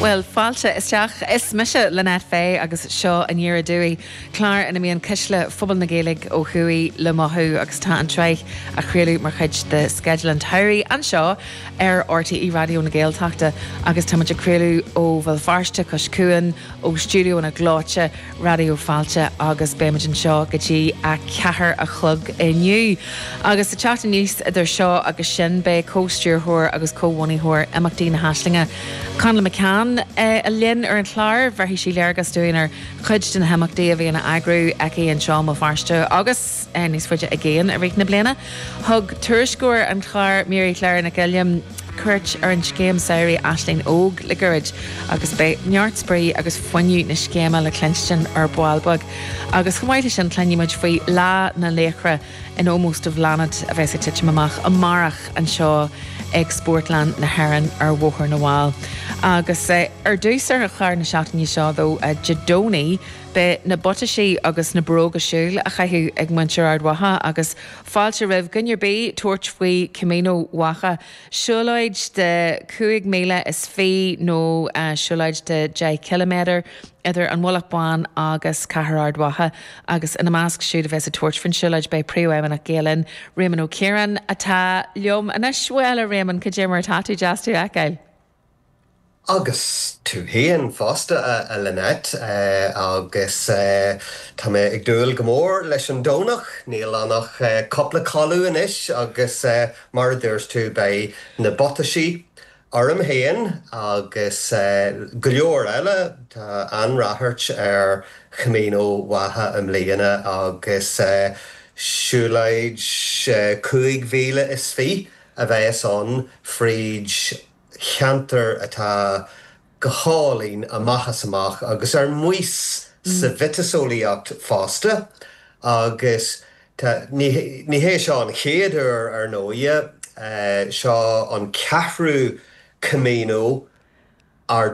Bhuel, fáilte isteach. Is mise Lynette Fay agus seo Aniar Aduaidh, clár ina mbíonn cuisle phobal na Gaeilge ó thuaidh le mothú agus tá an tsraith á chraoladh mar chuid de sceideal an tsamhraidh anseo ar RTÉ Raidió na Gaeltachta agus táimid ag craoladh ó Bhéal Feirste cois cuain ó stiúideóanna gleoite Raidió Fáilte agus beimid anseo go dtí a ceathair a chlog inniu. Agus ag teacht aníos idir seo agus sin beidh comh-stiúrthóir agus comhbhunaitheoir imeachtaí na hAislinge, Connla McCann, linn ar an chlár. Bheirfidh sí léargas dúinn ar chuid de na himeachtaí a bhíonn a eagrú aici anseo i mBéal Feirste agus. níos faide i gcéin i rith na bliana. Thug tuairisceoir an chláir, Mary Clare Nic Uilliam, cuairt ar scéim samhraidh Aisling Óg le gairid agus beidh neart spraoi agus fuinneamh na scéime le cluinstin ar ball beag. Agus chomh maith leis sin, cluinfidh muid faoi Lá na Laochra in ómós do Bhláthnaid a bheas ag titim amach amárach anseo ag Spórtlann na hÉireann ar Bhóthar na bhFál. Agus ar dtús ar chlár na seachtaine seo, Dé Domhnaigh, Beidh na buataisí agus na bróga siúil á gcaitheamh ag muintir Ard Mhacha agus fáilte roimh dhuine ar bith tabhairt faoi Camino Mhacha, siúlóid de chúig mhíle is fiche nó siúlóid de dheich chiliméadar idir an Mhullach Bán agus Cathair Ard Mhacha agus ina measc siúd a bheas ag tabhairt faoin siúlóid beidh Príomhfheidhmeannach Gael Linn, Réamonn Ó Ciaráin, atá liom anois. Bhuel, a Réamainn, cad é mar atá tú? Deas tú a fheiceáil. Agus tú féin fosta, a Lynette. Agus tá mé ag dúil go mór leis an Domhnach, níl ann ach cupla codladh anois agus mar a dúirt tú, beidh na buataisí orm féin agus go leor eile, tá an-rachairt ar Chamino Mhacha i mbliana agus siúlóid chúig mhíle is fiche a bheas ann fríd ceantar atá go hálainn amach is amach agus ar maos sa mhiotaseolaíocht fosta agus tá, ní hé seo an chéad uair ar ndóighe, seo an ceathrú Camino, Ard